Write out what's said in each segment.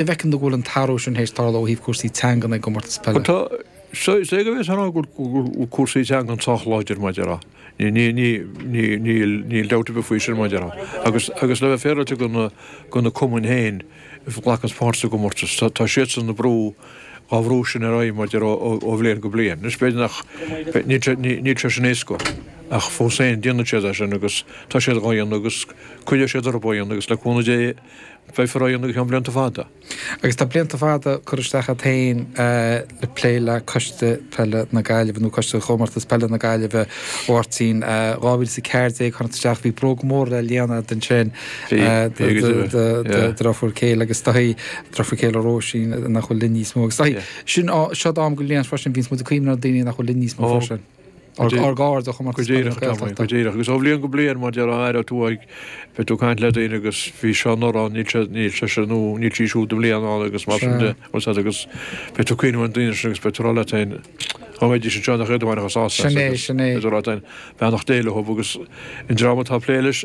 Ní fheicim go bhfuil an t-athrú sin théis tarlú ó thaobh cúrsaí teangan i gcomórtas peile. Tá seans ann a bheith ann go bhfuil cúrsaí teangan sách láidir maidir le. Níl dabht ar bith faoi sin maidir le. Agus le bheith féaráilte do na cumainn féin a ghlacas páirt sa gcomórtas, tá siadsan ag brú á bhrú sin ar aghaidh maidir le ó bhliain go bliain. Anois b'fhéidir nach. Níl sé sin éasca, ach fós féin déanann siad é sin agus tá siad á dhéanamh agus coinneoidh siad orthu á dhéanamh agus le cúnamh Dé, Beidh faoi cheann blianta fada. Agus tá blianta fada curtha isteach agat féin le plé le Coiste Peile na Gaillimhe, nó Coiste Chomórtas Peile na Gaillimhe, Mháirtín. dhá mhíle is a ceathair déag tháinig tú isteach, bhí bróg mór le líonadh ansin do dheartháir céile agus do do dheartháir céile ansin nach bhfuil linn níos mó. Agus do shuí, sin, seo d'am go líonfar sin, bíonns muid ag cuimhneamh ar dhaoine nach bhfuil linn níos mó freisin. ár gcairde chomh maith agus na Gaeltachta. Go díreach, agus ó bhliain go bliain, maidir le, tú ag, bheidh tú ag caint le daoine agus bhí seo anuraidh ann, níl sé, níl sé siúd, nó níl sí siúd i mbliana ann agus mar sin de, bhfuil a fhios a'd, agus beidh tú cuimhneamh ar na daoine sin agus beidh tú ag rá leat féin, á mbeidís anseo nach iad a bhainfeadh sásamh as, agus beidh tú ag rá leat féin, beannacht Dé leothub, agus an dream atá ag plé leis,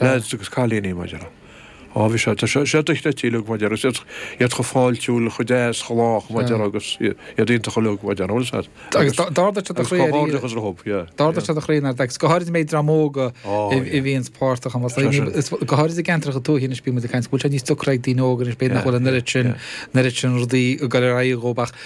lads agus cailíní, maidir le. Á, bhí siad, tá siad, siad dochreidte uilig, maidir le, iad, iad chomh fáiltiúil, chomh deas, chomh lách, maidir le, agus iad, iad iontach uilig, maidir le, bhfuil a fhios a'd? Agus tá, tá ardú croí ann dáiríre agus tógáil, yeah. Tá ardú croí ann, agus go háirid an méid dream óg a, a bhíonns páirteach ann, Sure, sure. is go háirid i gceantracha tuaithe anois bíonn muid ag caint, bhfuil sé níos deacra ag daoine óga anois, bíonn nach bhfuil an oiread sin, an oiread sin rudaí ag goil ar aghaidh dhób ach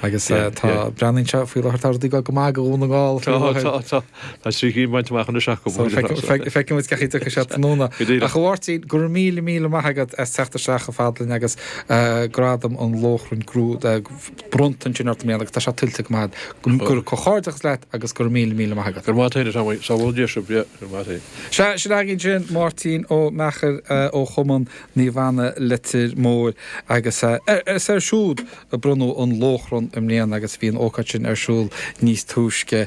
Agus tá breathnaíonn sé faoi láthair, tá rudaí go maith ag Dún na nGall faoi láthair. Tá, tá, tá trí cinn bainte amach anois acu. So feic, feicfidh muid cén chaoi a dtiocfaidh sé seo tráthnóna. Go díreach. Ach a Mháirtín, go raibh míle, míle maith agat as teacht isteach chomh fada linn agus gradam an lóchrann bronnta ansin ort i mbliana agus tá sé tuillte go maith a'd. Comhghairdeachas leat agus go raibh míle, míle maith agat. Go raibh maith agat, Tommy. Bail ó Dhia oraibh, yeah, go raibh maith agat. Sea, sin againn sin, Máirtín Ó Meachair ó Chumann Naomh Anna, Leitir Móir, agus is air siúd a bronnadh an lóchrann i mbliana agus bhí an ócáid sin ar siúl níos túisce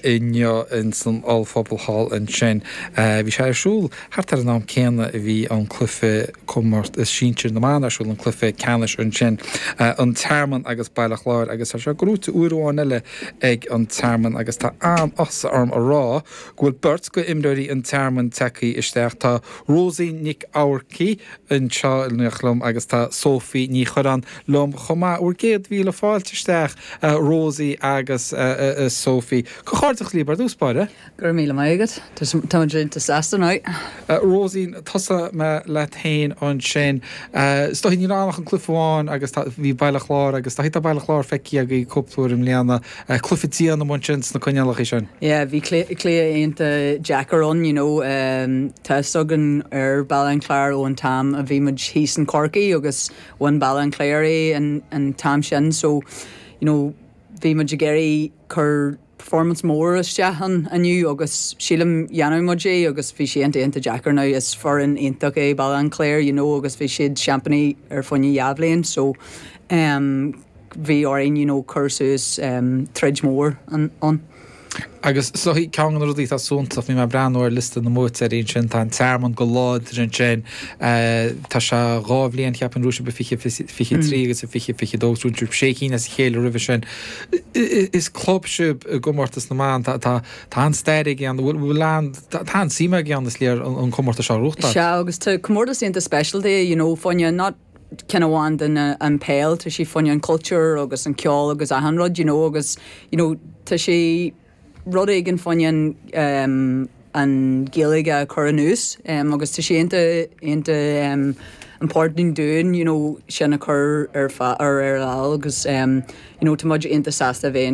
inniu ins an ollphuball thall ansin. Bhí sé ar siúl thart ar an am céanna a bhí an cluife comórtas sinsir na mban ar siúl, an cluife ceannais ansin, an Tearmann agus Baile Chláir agus tá sé gnóite uair amháin eile ag an Tearmann agus tá an-áthas orm a rá go bhfuil beirt d'imreoirí an Tearmainn tagthaí isteach. Tá Rosie Nic Eamharcaigh. anseo in éineacht liom agus tá Sophie Ní Chuireáin liom chomh maith. Bhur gcéad míle fáilte isteach a Rosie agus a Sophie. Comhghairdeachas libh ar dtús báire! Go raibh míle maith agat. Tá muid iontach sásta inniu. Rosie, tosóidh mé leat féin ansin. Is dóigh, níl ann ach an cluife amháin agus tá, bhí Baile Chláir agus, tá tá Baile Chláir feicthe agaí cúpla uair i mbliana. Cluife dian amuigh ansin sna coinníollacha sin. Yeah, bhí cluife iontach deacair ann, you know. Tá a fhios againn ar Baile an Chláir ón t-am a bhí muid thíos in Corcaigh agus bhain Baile an Chláir é an t-am sin so you know bhí muid ag iarraidh cur performance mór isteach ann inniu agus sílim dhéan muid é agus bhí sé iontach iontach deacair now is foireann iontach é Baile an Chláir you know agus bhí siad seaimpíní ar fá choinne dhá bhliain so em bhí orainn you know cur suas em troid mór ann. Agus is dóigh ceann de na rudaí atá suntasach, bhí mé ag breathnú ar liosta na mbuaiteoirí ansin, tá an Tearmann go láidir ansin, tá sé dhá bhliain, ceapaim, bhuaigh sibh 20, 23 agus 20, 22 is roinnt, sé cinn as a chéile roimhe sin. Is club sibh i gcomórtas na mban, tá an-stair agaibh ann, bhfuil an, tá an-suim agaibh ann, is léir, an comórtas seo a bhuachtáil. Sea, agus tá an comórtas iontach special dúinn, you know, faoina, not, ceann amháin de na, an peil, tá sé faoina an cultúr agus an ceol agus achan rud, you know, agus, you know, tá sé rud éigin faoina an, ehm, an Ghaeilge a chur anuas, ehm, agus tá sé iontach, iontach, ehm, important dúinn, you know, sin a chur ar fáil, ar fhear a fháil agus, ehm, you know, tá muid iontach sásta a bheith ansin.